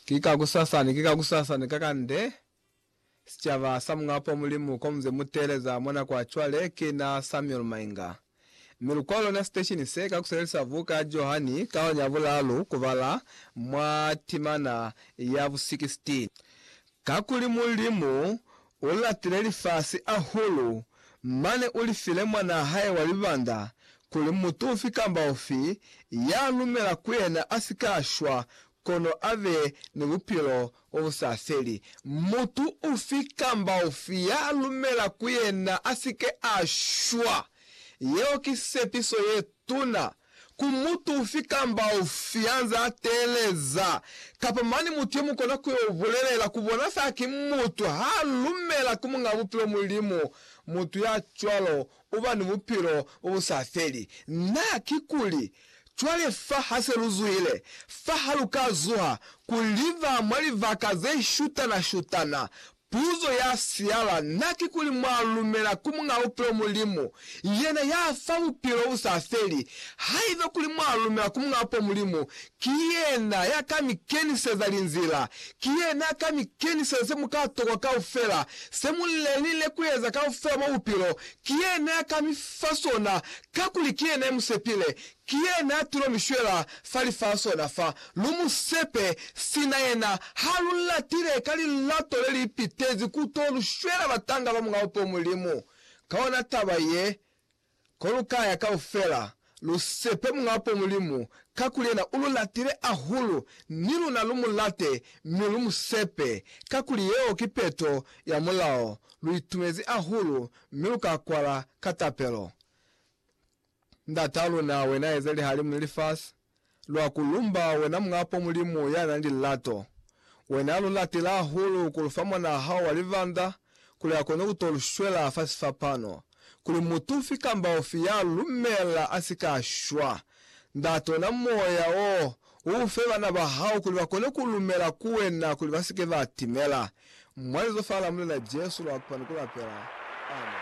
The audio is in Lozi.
Ki ka kusasani, ki ka kusasani kakande, sicaba sa Muñ'a Poo Mulimu ko muze mu teeleza mwa nako ya cwale. Ki na Samuel Mainga. Mi lukwalo luna siteshini se ka kusebelisa buka ya Johani kaoni ya bulaalu kubala mwa timana ya bu 16. Kakuli Mulimu u lapile lifasi ahulu, mane u li file Mwanaa hae wa libanda, kuli mutu ufi kamba ufi ya lumela ku yena a si ka shwa, kono a be ni bupilo bwa bu sa feli. Mutu ufi kamba ufi ya lumela ku yena a si ke a shwa. Yeo ki sepiso ye tuna ku mutu ufi kamba ufi ya nze a teeleza, kapa mane mutu ye mu kona ku yo bulelela ku bona fa ki mutu ha lumela ku Muñ'a Bupilo Mulimu, mutu ya cwalo u ba ni bupilo bo bu sa feli. Na, kikuli, cwale fa ha se lu zuhile, fa ha lu ka zuha, ku liba mwa libaka ze shutana-shutana, Puzo ya siala na kikuli mwa lumela ku Muñ'a Bupilo Mulimu, yena ya fa bupilo bu sa feli. Haiba kuli mwa lumela ku Muñ'a Bupilo Mulimu, ki yena ya ka mi keniseza linzila. Ki yena ya ka mi keniseza se mu ka tokwa kaufela, se mu lenile ku eza kaufela mwa bupilo. Ki yena ya ka mi fa sona, kakuli ki yena ya mu sepile. Ki yena tulo mi shwela fa lifasona fa. Lu mu sepe, sina yena ha lu latile ka lilato le li pitezi ku to lu shwela batanga ba Mulao po Mulimu. Ka ona taba ye, ko lu ka ya kaufela, lu sepe Mulao po Mulimu, kakuli yena u lu latile ahulu, ni luna lu mu late mi lu mu sepe, kakuli yeo ki peto ya Mulao. Lu itumezi ahulu mi lu ka kwala ka tapelo. Ndata luna, wena eze lihalimu ni lifasi, lwa ku lumba wena Muñapo Mulimu ya na ni lilato. Wena lu latile hahulu ku lu fa mwanaa hao wa libanda kuli a kone ku to lu shwela fa sifapano, kuli mutu ufi kamba ufi ya lu lumela a si ka shwa. Ndata ona moya wo, u u fe bana ba hao kuli ba kone ku lumela ku wena kuli ba si ke ba timela. Mwa lizofa la Mulena Jesu lwa kupa ni ku lapela. Amen.